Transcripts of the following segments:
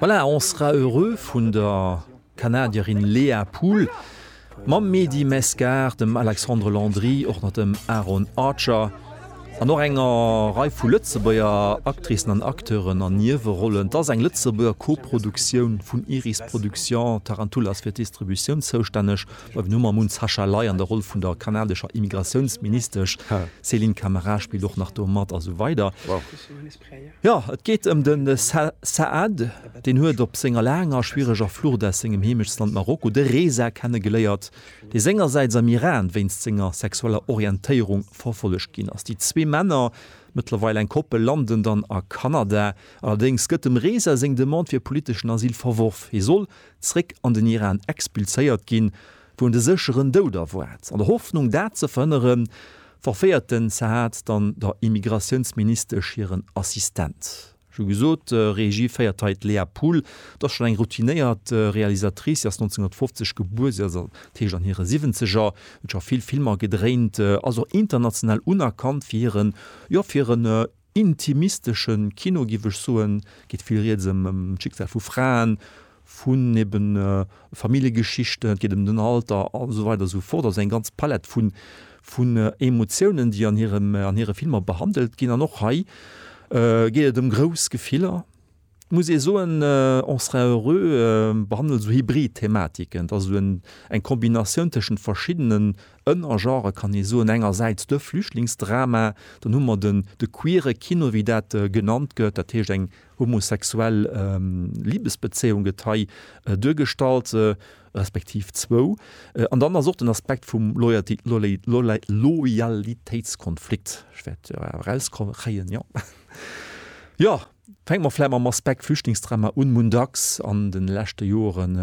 Voilà, on sera heureux vun der Kanadierin Léa Pool mam Mehdi Mescar, dem Alexandre Landry, och nach dem Aaron Archer an och enger Rei vu Lëtzebuerger Actricen an Acteuren an Niewerollen. Et ass eng Lëtzebuerger Koproduktioun vun Iris Production. Tarantula ass fir d'Distributioun zoustänneg. Mir hu mam Mun Sascha Ley an der Roll vun der kanadescher Immigratiounsministesch, d'Céline Camara spillt och nach do mat a sou weider. Jo, et geet ëm de Saad. Deen huet op senger laanger a schwiereger Flucht aus sengem Heemechtsland Marokko de Reza kennegeléiert, dee sengersäits am Iran wéinst senger sexueller Orientéierung verfollegt ginn ass. Déi zwee Männer, mëttlerweil eng Koppel, landen dann a Kanada. Allerdéngs gëtt dem Reza seng Demande fir politeschen Asyl verworf. Hie soll zeréck an den Iran expulséiert ginn. wou en de sécheren Doud erwaart. An der Hoffnung dat ze verhënnere verféiert den Zahad dann der Immigratiounsministesch hiren Assistent. Ech hu gesot, Regie féiert hei d'Léa Pool. Dat ass schonn eng routinéiert Realisatrice. Si ass 1950 gebuer, si ass an dat heescht an hire Siwwenzeger, huet scho vill Filmer gedréint, ass och international unerkannt fir hiren, jo fir hiren intimistesche Kino, giff ech soen, geet vill rieds ëm d'Schicksal vu Fraen, vun eben Familljegeschichten, et geet ëm den Alter a sou weider a sou fort. Also eng ganz Palett vun Emotiounen, déi an hire Filmer behandelt ginn. An och hei geet et ëm grouss Gefiller. Et muss ee soen, on sera heureux behandelt esou hybrid Thematiken, et ass esou eng Kombinatioun tëschent verschiddenen Ënnergenrë kann ee soen. Engersäits de Flüchtlingsdrama, dann hu mer de queere Kino, wéi dat genannt gëtt, dat heescht eng homosexuell Libesbezéiung gëtt hei duergestallt, respektiv zwou. An dann ass och den Aspekt vum Loyalitéitskonflikt, ech wäert erauskommen kréien, jo. Fänke mer vläicht mam Aspekt Flüchtlingsdrama un. Mun dacks an de leschte Joren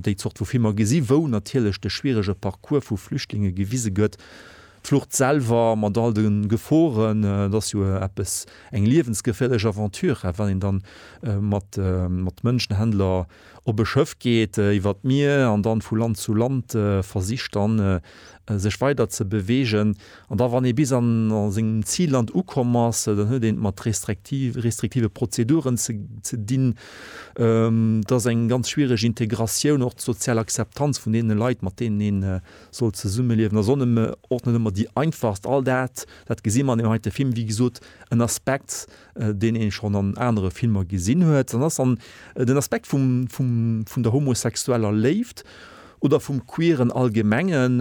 déi Zort vu Filmer gesi wou natierlech de schwierege Parcours vu Flüchtlinge gewise gëtt, d'Flucht selwer mat all de Geforen, et ass jo eppes eng liewensgeféierlech Aventure, well een dann mat Mënschenhändler op e Schëff geet iwwer d'Mier an dann vu Land zu Land versicht dann sech weider ze beweegen an da wann ee bis an sengem Zilland ukomm ass, dann huet een et mat restriktive Prozeduren ze dinn. Et ass eng ganz schwiereg Integratioun, och d'sozial Akzeptanz vun deene Leit mat deenen een soll zesummeliewen ass och net ëmmer déi einfachst. All dat, dat gesi mer an deem heite Film, wéi gesot en Aspekt deen ee schonn an anere Filmer gesinn huet, dann ass an den Aspekt vum, vum, vun der homosexueller Léift oder vum Queeren allgemengen.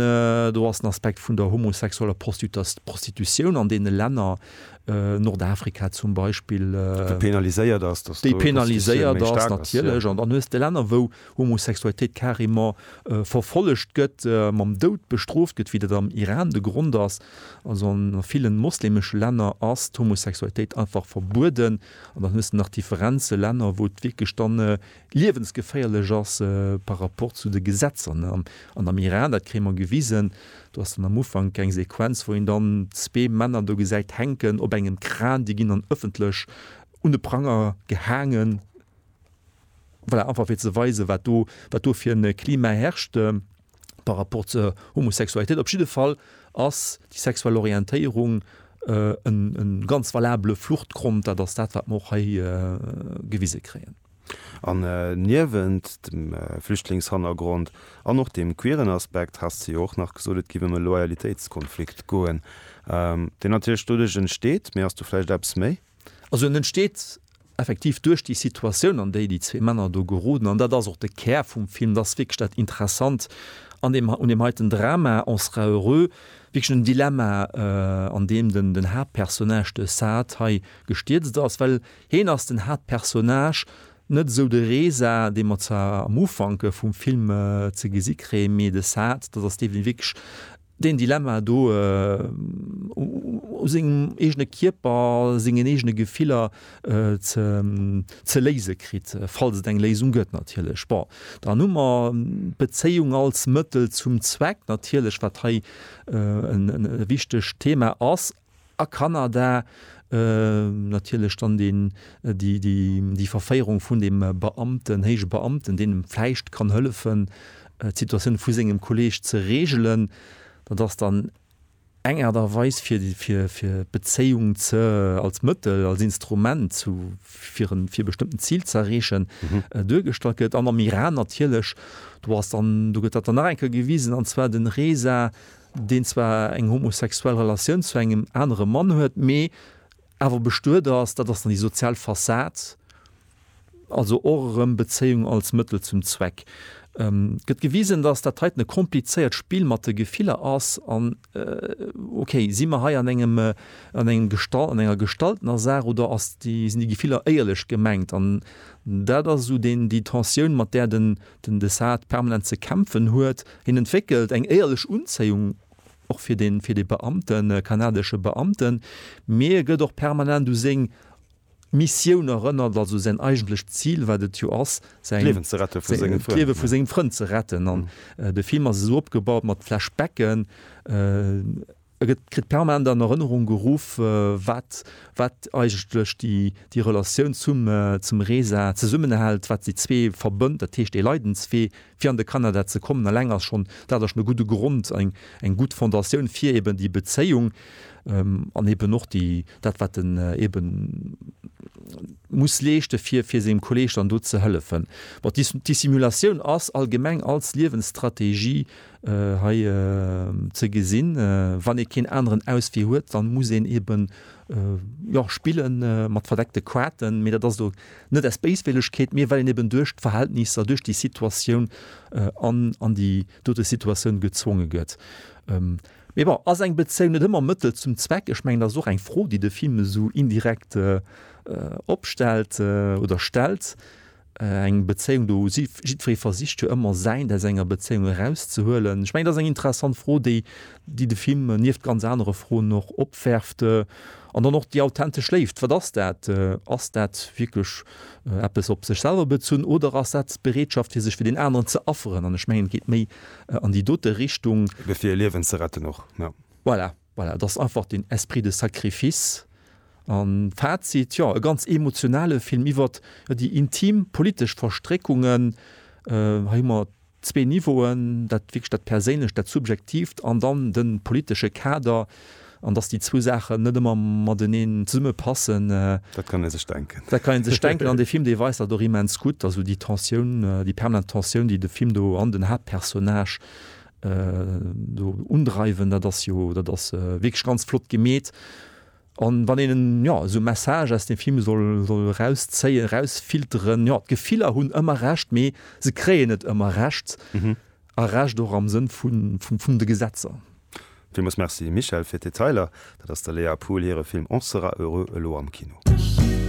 Do ass den Aspekt vun der homosexueller Prostitutioun an deene Länner, Nordafrika zum Beispill, déi penaliséiert ass, dass do d'Prostitutioun méi staark ass. Déi penaliséiert ass, natierlech. An dann hues de Länner, wou Homosexualitéit carrément verfollegt gëtt, mam Doud bestrooft gëtt, wéi dat am Iran de Grond ass. Also an a villen moslemesche Länner ass d'Homosexualitéit einfach verbueden. An dann hues de nach Differenzen, Länner wou et wierklech dann liewensgeféierlech ass par rapport zu de Gesetzer ne. An an am Iran, dat kréie mer gewisen, do ass dann am Ufank eng Sequenz wou een dann zwee Männer do gesäit hänken op engem Kran, déi ginn dann ëffentlech un de Pranger gehaangen, voilà einfach fir ze weisen wat do wat do fir en Klima herrscht. par rapport zur Homosexualitéit. Op jidde Fall ass déi sexuell Orientéierung e ganz valabele Fluchtgrond. Dat ass dat, wat mer och hei gewise kréien. An niewent dem Flüchtlingshannergrond an och deem queeren Aspekt has de jo och nach gesot, et géif ëm e Loyalitéitskonflikt goen, deen natierlech doduerch entsteet. Mee ass do vläicht eppes méi? Also en entsteet effektiv duerch déi Situatioun, an déi déi zwee Männer do geroden. An dat ass och de Kär vum Film, dat ass wierklech dat Interessant an deem, un deem heiten Drama, On sera heureux, wierklech en Dilemma, an deem den, den Haaptpersonnage, de Saad, hei gestierzt ass. Well hien ass den Haaptpersonnage, net esou de Reza, dee mer zwar am Ufank vum Film ze gesi kréien, mee de Saad, dat ass dee, dee wierklech Deen Dilemma do, u sengem eegene Kierper, sengen eegene Gefiller ze léise kritt, falls et eng Léisung gëtt natierlech. Bon, dann hu mer d'Bezéiung als Mëttel zum Zweck natierlech, wat hei e wichtegt Thema ass. A Kanada natierlech dann deen, déi, déi, déi Verféierung vun deem Beamten, héije Beamten, deen em vläicht kann hëllefen, d'Situatioun vu sengem Kolleeg ze regelen. Dat ass dann eng Aart a Weis fir, fir, fir d'Bezéiung ze, als Mëttel, als Instrument zu, fir en, fir e bestëmmten Zil ze erreechen, duergestallt gëtt. An am Iran natierlech, do ass dann, do gëtt dat dann nach eng Kéier gewisen, an zwar den Reza deen zwar eng homosexuell Relatioun zu engem anere Mann huet, mee awer bestuet ass, dat ass dann déi sozial Fassad, also och erëm Bezéiung als Mëttel zum Zweck. Et gëtt gewisen, datt dat heiten e komplizéiert Spill mat de Gefiller ass an, ok, si mer hei an engem, an engem Gesta-, an enger gestaltener Saach oder ass déi, sinn déi Gefiller éierlech gemengt? An dat ass esou deen, déi Tensioun, mat där de den Desart permanent ze kämpfen huet. Hien entwéckelt eng éierlech Unzéiung och fir de fir de Beamten, kanadesche Beamten, mee e gëtt och permanent u seng Missioun erënnert, also säin eigentlecht Zil, wat et jo ass, säin D'Liewen ze rette vu senge Frënn. D'Liewe vu sengem Frënd ze retten an de Film ass esou opgebaut mat Flashbacken, Et kritt permanent an Erënnerung geruff, wat wat eigentlech déi Relatioun zum zum Reza zesummenhält, wat déi zwee verbënnt, dat heescht ee Leidenswee fir an de Kanada ze kommen. Alleng ass schonn dat ass schonn e gudde Grond, eng gutt Fondatioun fir eben déi Bezéiung an eben och déi dat wat en eben muss leeschte fir fir sengem Kolleeg dann do ze hëllefen. Bon, d'Dissimulatioun ass allgemeng als Liewensstrategie hei ze gesinn, wann ee keen aneren Auswee huet, dann muss een eben jo spille mat verdeckte Kaarten, mee dat ass elo net aus Béiswëllegkeet, mee well een eben duerch d'Verhältnisser, duerch déi Situatioun an an déi dote Situatioun gezwonge gëtt. Mee bon, ass eng Bezéiung net ëmmer Mëttel zum Zweck? Ech mengen dat ass och eng Fro, déi de Film esou indirekt opstellt oder stellt. Eng Bezéiung, do hu si jiddweree versicht jo ëmmer Säint aus enger Bezéiung erauszehuelen. Ech mengen, dat ass eng interessant Fro, déi déi de Film nieft ganz anere Froen och opwerft. An dann och déi authentesch Léift, wat ass dat? Ass dat wierklech eppes op sech selwer bezunn oder ass dat d'Bereetschaft fir sech fir deen aneren ze afferen? An ech mengen et geet méi an déi dote Richtung. Fir e Liewen ze retten och, jo. Voilà. Voilà, et ass einfach den Esprit de sacrifice. An Fazit, jo, e ganz emotionale Film iwwert déi intim politesch Verstréckungen. Hei hu mer zwee Niveauen, dat wierklech dat Perséinlecht, dat Subjektiivt an dann de politesche Kader. An dass déi zwou Saachen net ëmmer mateneen zesumme passen, dat kann ee sech denken. Dat kann ee sech denken an dee Film, dee weist dat och immens gutt. Also déi Tensioun, déi permanent Tensioun, déi de Film do an den Haaptpersonnage do undreiwen, dat ass jo, dat ass wierklech ganz flott gemeet. An wann een ja esou e Message aus dem Film soll, soll erauszéien, erausfilteren, ja d'Gefiller hunn ëmmer Recht, mee se kréien net ëmmer Recht a Recht och am Sënn vun, vun, vun de Gesetzer. Villmools Merci Michèle fir d'Detailer. Dat ass der Léa Pool hire Film On sera heureux elo am Kino.